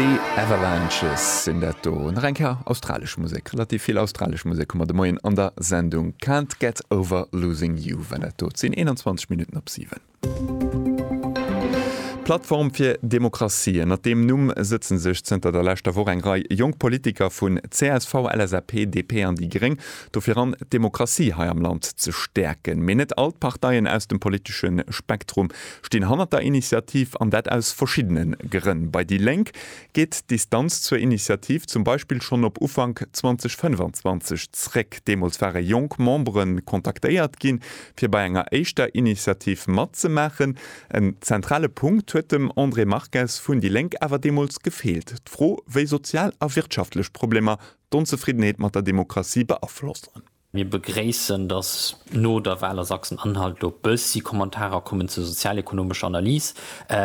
The Avalanches sinn dat do. Nach eng Kéier australesch Musek. Relativ vill australesch Musek hu mer de Moien an der Sendung. Can't Get Over Losing You war dat do. Et sinn 21 Minutten op 7. D'Plattform fir Demokratie, ënnert deem Numm sëtzen sech zënter der leschter Woch eng Rei jonk Politiker vun csv, LSAP, DP an déi gréng dofir ran, d'Demokratie hei am Land ze stäerken. Mee net all d'Parteien aus dem politesche Spektrum stinn hannert der Initiativ, an dat aus verschiddene Grënn. Bei déi Lénk geet d'Distanz zur Initiativ zum Beispill schonn op Ufank 2025 zréck. Deemools ware jonk Membere kontaktéiert gi fir bei enger éischter Initiativ matzemaachen. En zentrale Punkt huet dem André Marques vun déi Lénk awer deemools gefeelt, d'Fro, wéi sozial a wirtschaftlech Problemer d'Onzefriddenheet mat der Demokratie beaflossen. Mir begréissen, dass no der Wal a Sachsen-Anhalt elo e bëssi Kommentarer kommen zur sozialekonomescher Analys,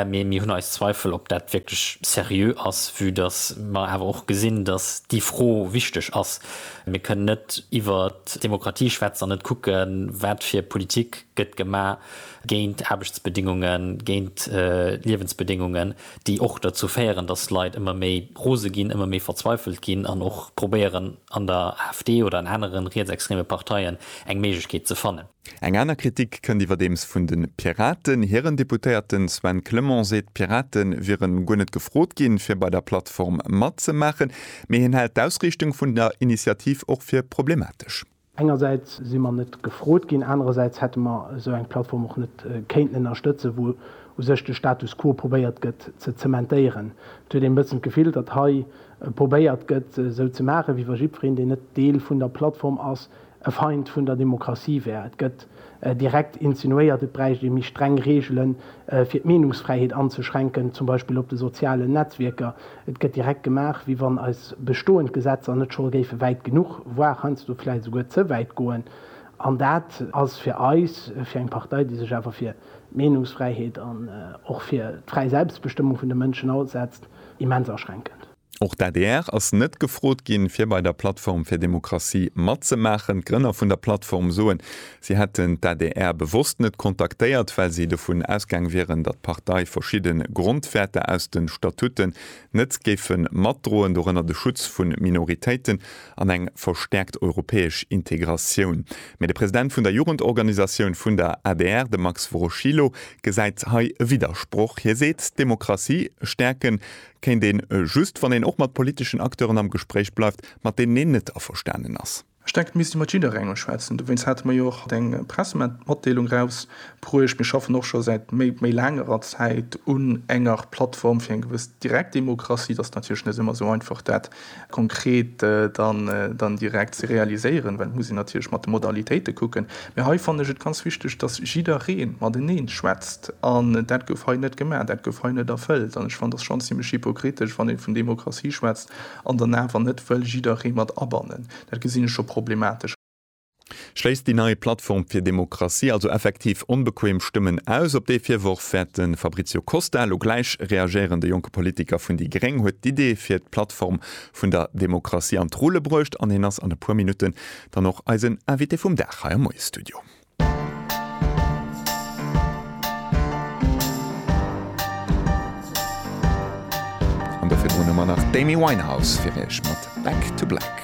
mee mir hunn eis Zweifel, ob dat wierklech seriö ass, vue dass mer awer och gesinn, dass déi Fro wichteg ass. Mir kënnen net iwwer d'Demokratie schwätzen an net kucken, wat fir e Politik gëtt gemaach géint Aarbechtsbedingungen, géint Liewensbedingungen, déi och derzou féieren, dass Leit ëmmer méi rose ginn, ëmmer méi verzweifelt ginn an och probéieren, an der AfD oder an aneren rietsextreme Parteien eng Méiglechkeet ze fannen. Eng aner Kritik kënnt iwwerdeems vun de Piraten. Hiren Deputéierten Sven Clement seet, d'Pirate wieren guer net gefrot ginn, fir bei der Plattform matzemaachen. Mee hien hält d'Ausriichtung vun der Initiativ och fir problematesch. Engersäits si mer net gefrot ginn, anerersäits hätte mer esou eng Plattform och net kéinten ënnerstëtzen, wou u sech de Status quo probéiert gëtt ze zementéieren. Et huet een e bëssen d'Gefill, datt hei probéiert gëtt, esou ze maachen, wéi wa jiddwereen, deen net Deel vun der Plattform ass, e Feind vun der Demokratie wär. Et gëtt direkt insinuéiert, et bräicht ee méi streng Reegelen, fir d'Meenungsfräiheet anzeschränken, zum Beispill op de sozialen Netzwierker. Et gëtt direkt gemaach, wéi wann eis bestoend Gesetzer net scho géife wäit genuch, voire heiansdo vläicht esouguer ze wäit goen. An dat ass fir eis, fir eng Partei, déi sech awer fir d'Meenungsfräiheet an och fir d'fräi Selbstbestëmmung vun de Mënschen asetzt, immens aschränkend. Och d'ADR ass net gefrot ginn, fir bei der Plattform fir Demokratie matzemaachen. D'Grënner vun der Plattform soen, si hätten d'ADR bewosst net kontaktéiert, well si dovun ausgaang wieren, datt d'Partei verschidde Grondwäerter aus de Statuten net géife matdroen, dorënner de Schutz vu Minoritéiten. an eng verstäerkt europäesch Integratioun. Mee de President vun der Jugendorganisatioun vun der adr, de Max Woroschilo, gesäit hei e Widdersproch. Hie seet, d'Demokratie stäerken kéint een just, wann een och mat politeschen Acteuren am Gespréich bleift, mat deenen een net averstanen ass. Ech denken, et misst ee mat jidderengem schwätzen. Dowéinst hate mer jo och haut eng Pressematdeelung erausbruecht. Mir schaffen och scho säit méi längerer Zäit un enger Plattform fir eng gewëss Direktdemokratie. Et ass natierlech net ëmmer esou einfach, dat konkret dann direkt ze realiséieren, well et muss een natierlech mat de Modalitéite kucken. Mä hei fannen ech et ganz wichteg, datt jidderee mateneen schwätzt. An dat gouf hei net gemaach, dat gouf hei net erfëllt. An ech fannen, et ass schonn zimlech hypokritesch, wann ee vun Demokratie schwätzt an dann awer net wëll jidderee mat abannen. Dat gesinn ech scho problematesch. Schléisst déi nei Plattform fir Demokratie also effektiv onbequem Stëmmen aus? Op dee Virworf wäert de Fabrizio Costa elo gläich reagéieren. De jonke Politiker vun déi gréng huet d'Idee fir d'Plattform vun der Demokratie an d'Rulle bruecht an hien ass an e puer Minutten dann och eisen Invité vum Dag hei am Moie-Studio. An dofir droen hu mer nach d'Amy Winehouse fir iech mat Back to Black.